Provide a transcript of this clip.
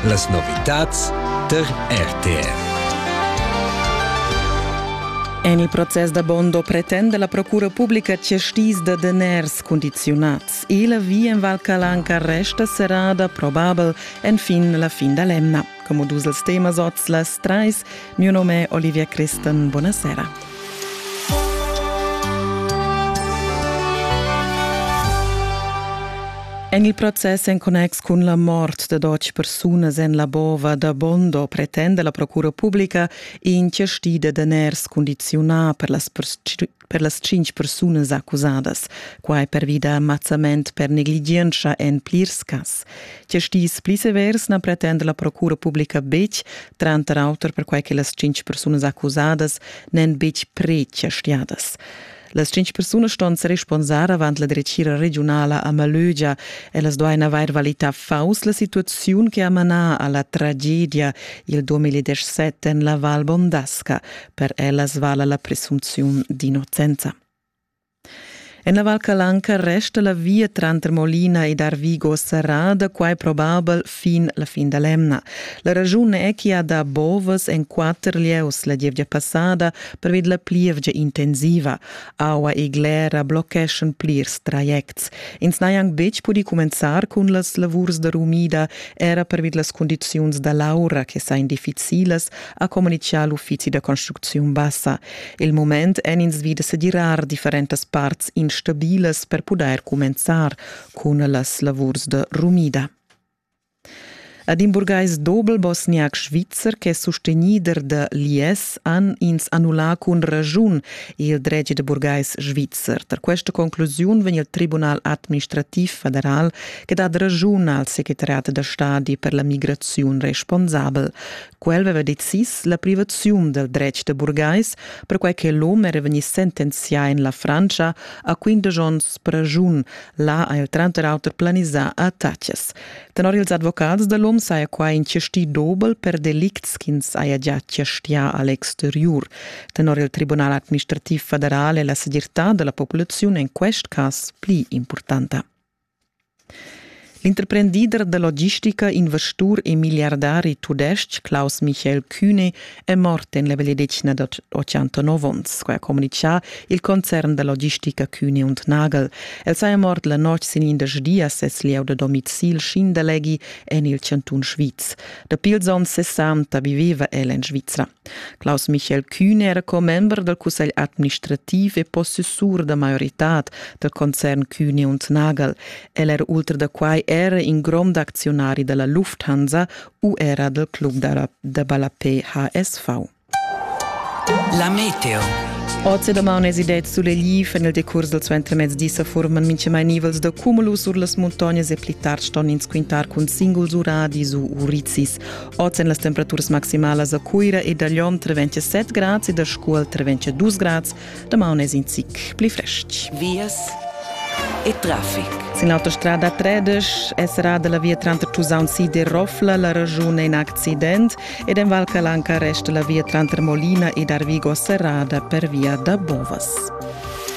Las novitads tar RTR. En il process da Bondo pretenda la Procura publica chastis da daners condiziunads e la via en Val Calanca resta serrada, probabel, enfin la fin da l'emna. Como dus els temas oz las trais. Mio nome è Olivia Christen. Buonasera. En il process en connex cun la mort de dotg persunas en la bova da Bondo pretende la Procura Publica incești de daners condiziona per las per las tschintg persunas accusadas, quai pervi da mazzament per negligientscha en plirs cas. Tge stis pli severs na pretenda la procura publica betg, tranter auter perquai che las tschintg persunas accusadas n'èn betg pre-chastiadas. Las cinc persunas ston sa responsar avant la dretgira regiunala a Malögia. Ellas duain avair valità faus la situaziun che ha manà a la tragedia il 2017 en la Val Bondasca, Per ellas vala la presumpziun d'innocenza. En la Val Calanca resta la via tranter Molina ed Arvigo serrada, quai probabel fin la fin da l'emna. La ragiun è ch'i ha dà bovas en quatter lieus la gievgia passada pervi da la plievgia intensiva. Aua e glera blocheschan plirs trajects. Ins n'ha anc betg pudì cumenzar cun las lavurs da rumida, era pervi da las cundiziuns da l'aura che sain difficilas, ha communitgà l'uffizi da construcziun bassa. Il mument èn ins vi da sedirar differentas parts instabilas per pudair cumenzar cun las lavurs da rumida. Ad in burgais dobel-bosniac svizzer ch'è sustegnider da l'IS han ins annullà cun raschun il dretg da burgais svizzer. Tar questa conclusiun vegn il Tribunal administrativ federal che dat raschun al secretariat da stadi per la migraziun responsabel. Quel veva decis la privaziun del dretg de burgais, perquai che l'hom era vegni sentenzià en la Frantscha a quindesch onns pragiun. Là ha el tranter auter planisà attacas. Tenor ils advocats dell'hom saja quai in chastì dobel per delicts ch'ins haja già chastià a l'exteriur. Tenor il Tribunal administrativ federal è la segirtà della populaziun en quest cas pli importanta. L'interprendider da logistica, investur e milliardari tudestg Klaus Michael Kühne è mort en la vegliadetgna da 89 onns, quai ha communitgà il concern da logistica Kühne und Nagel. El saja mort la notg sin indesch di a ses lieu da domicil Schindaleghi en il chantun Sviz. Dapi ils onns 60 viveva el en Svizra. Klaus Michael Kühn era commember dal cussegl administrativ e possessur da maioritad dal concern Kühne und Nagel. El era ultra da quai era in grond acziunari da la Lufthansa u era dal club da ballapé HSV. La Meteo Oz e damaun es idets sulegli en il decurs del suentermezdi sa forman mincha mai nivels da cumulus sur las muntognas e pli tard ston ins quintar cun singuls uradis u uricis. Oz èn las temperaturas maximalas a Cuira e da Lyon tra 27 grads e da Scuol tra 22 grads. Damaun è in zic pli frestg. Vias e traffic. Sin l'autostrada 13 è serrada la via tranter Tusaun Sid e Rofla, la ragiun è in accident ed en Val Calanca resta la via tranter Molina ed Arvigo serrada per via da Bovas.